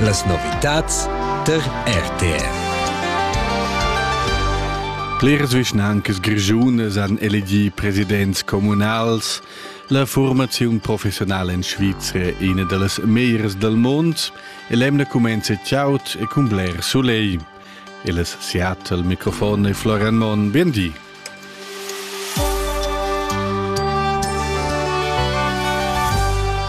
Las novitads tar RTF. Bleras vischnancas grischunas han elegì presidents communals. La formaziun professionala en Svizra è ina da las meglieras dal mund e l'emna cumenza chaud e cun bler sulegl. Il Seattle, mikrofon e Florian Monn, bien di.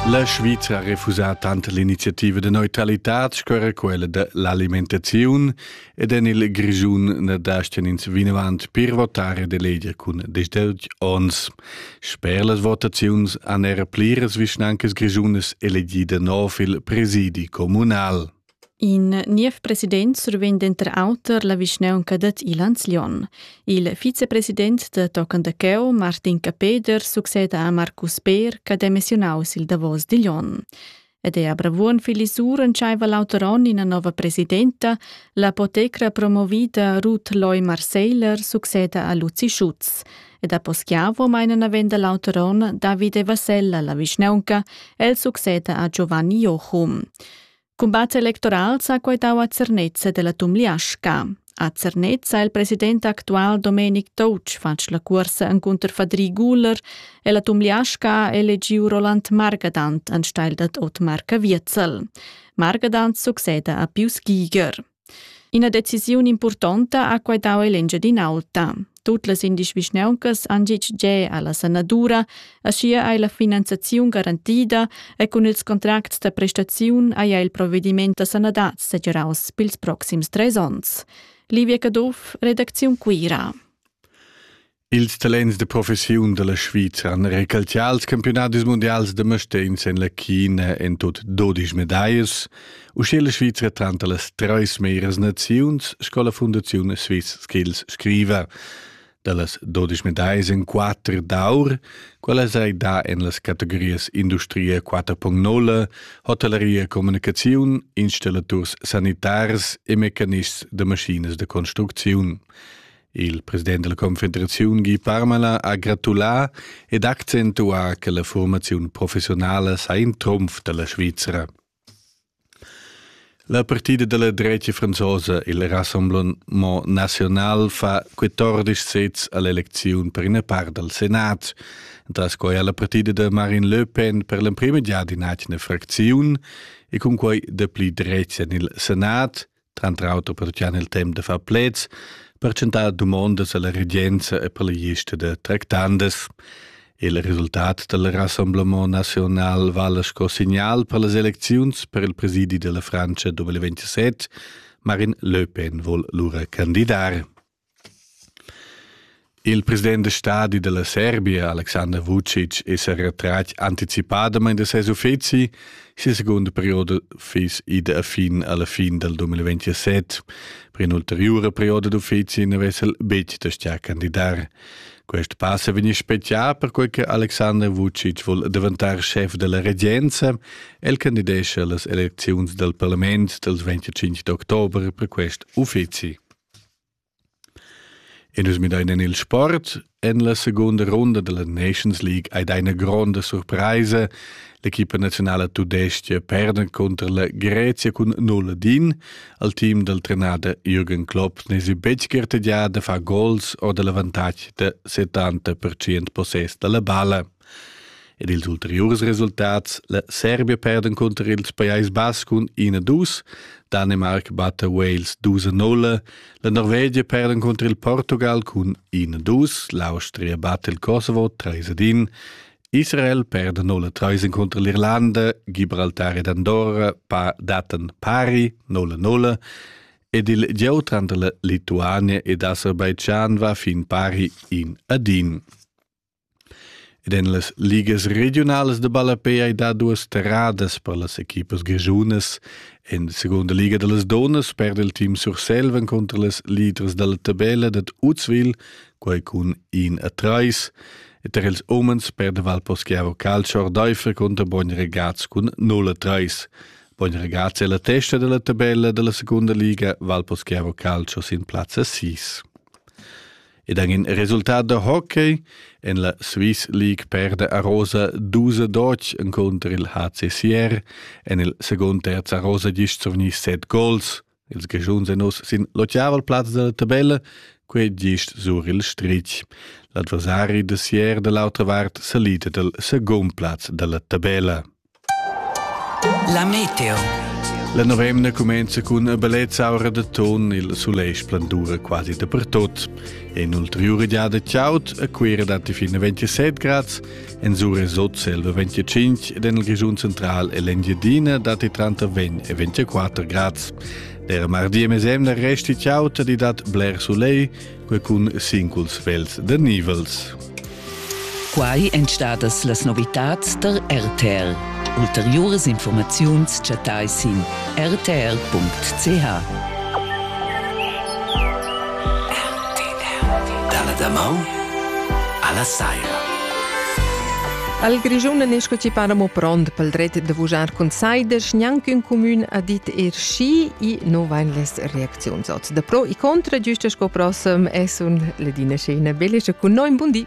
La Svizra ha refusà tant l'iniziativa de neutralitad sco quella de l'alimentaziun ed en il Grischun ne dasten ins vinavant per votare de leger cun 18 ons. Sper las votaziuns han er pliras vischnancas grischunas elegida nov il presidi comunal. In niev president survegn denter auter la vischnaunca dad Ilanz-Lyon. Il vicepresident da tochen da cheu, Martin Capeder, succeda a Marcus Beer ch'ha demissiunaus il davos di Lyon. Ed è a Bravuon Filisur entscheiva l'auter onn ina nova presidenta, l'apotecra promovida Ruth Loy Marseiler succeda a Luzi Schutz. Ed a Poschiavo meina navenda l'auter onn Davide Vassella la vischnaunca, el succeda a Giovanni Jochum. Cumbat electoral s'ha quaitau a Zernez della Tumliasca. A Zernez ha il president actual Domenic Touch fatg la cuorsa encunter Fadri Guler e la Tumliasca ha elegiu Roland Margadant anstelle dad Otmar Caviezel. Margadant succeda a Pius Giger. Ina decisiun impurtonta ha quai dau ell'Engiadin'Alta. Tut las indies vischnauncas han gitg ge alla sanadura, aschia ei la finanziaziun garantida e cun ils contracts da prestaziun haja il provediment da sanadad segiraus pils proxims treis onns. Livia Caduff, redacziun Cuira. Ils talents de professiun dalla Svizra han recalcià als campionadis mundials da Mastens en la China en tut 12 medaias, uschè la Svizra tranter las treis meras naziuns sco la Fundaziun Swiss Skills scriva. Dallas 12 medaias en 4 d'aur, quella sei da en las categorias industria 4.0, hotelleria communicaziun, installaturs sanitars e mecanists de maschinas de construcziun. Il president della Confederaziun Guy Parmelin ha gratulà ed accentuà che la formaziun professionala sei in trumf della Svizzera. La partida della drecha franzosa, il Rassemblement National, fa 14 sets all'elezione per una part del Senat, tras quai ha la partida de Marine Le Pen per l'emprima già in atgna fracziun e cun quai dapli drecha nel Senat Tranter auter pertgian il temp da far pleds, per tschentar dumondas alla regenza e per la gista da tractandas. Il resultat del Rassemblement National vala sco signal per las elecziuns per il presidi della Francia 2027. Marin Le Pen vol lura candidar. Il president da stadi dalla Serbia Alexander Vucic è sa retratg anticipadamain da ses uffizi. Sia segunda perioda fiss ida a fin alla fin dal 2027. Per in'ulteriura perioda d'uffizi n'avess el betg da stà candidar. Quest pass è vegnì spezià perquai che Alexander Vucic vul daventar schef della regenza. El candidescha las elecziuns dal parlament dals 25 d'october per quest uffizi. E nus midain en il sport. En la segunda runda della Nations League hai dà ina gronda surpraisa. L'equipa nazionala tudestga perda contro la Grezia cun null ad in. Al team dal trenader Jürgen Klopp n'esi betg gartegià da far gols o da l'avantatg da 70% possess da la balla. Ed ils ulteriurs resultats, la Serbia perda encunter il Pajais Bas cun 1-2, Danimarc batta Wales 2-0, la Norvegia perda encunter il Portugal cun 1-2, l'Austria batta il Kosovo 3-1, Israel perda 0-3 encunter l'Irlanda, Gibraltar ed Andorra pa dattan pari 0-0 ed il gieu tranter la Lituania ed Aserbaidschan va fin pari in ad in. Ed en las ligas regiunalas de ballapei hai dà duas terradas per las equipas grischunas. En la segunda liga da las donas perde il team Surselva contra las leaders da la tabella dad Uzwil, quai cun in a trais. E tar ils umens perde Valposchiavo Calcio Ordeifer contra Bogn Regaz cun 0 a 3. Bogn Regaz è la testa della tabella della seconda liga, Valposchiavo Calcio sin plazza 6. ed en in resultat da hockey en la Swiss League perde a Rosa 12 Deutsch encunter il HCCR en il secund terz a Rosa gist survgni set gols. Ils Grischuns en oss sin l'otgavel plaz della tabella, quei gist sur il stritg. L'adversari de Sier de l'autra vart salita del secund plaz della tabella. La meteo. La novemna cumenza cun a ballezz'aura da ton il sulegl splendura quasi dapertut. En ulteriura giada chaud a Cuira datti fin a 27 grads, en Sure sot selva 25 ed en il Grischun central e l'Engiadina datti tranter 20 e 24 grads. Der mardi e mesemna resti chaud di dat bler soleil, quei cun singuls vels de nivels. Quai èn stadas las novitads der RTL. Ulteriores Informaziuns chattai sin rtl.ch. Dalla damau alla saira. Al Grischun n'è sco ci para mo pront pel dret de vujar con saides, gnanc ün cumün ha dit er schi e no vain les reacziuns ot. Da pro e contra, giusta sco prossem, è sun Ledina Scena Belescha cun noi in bun di.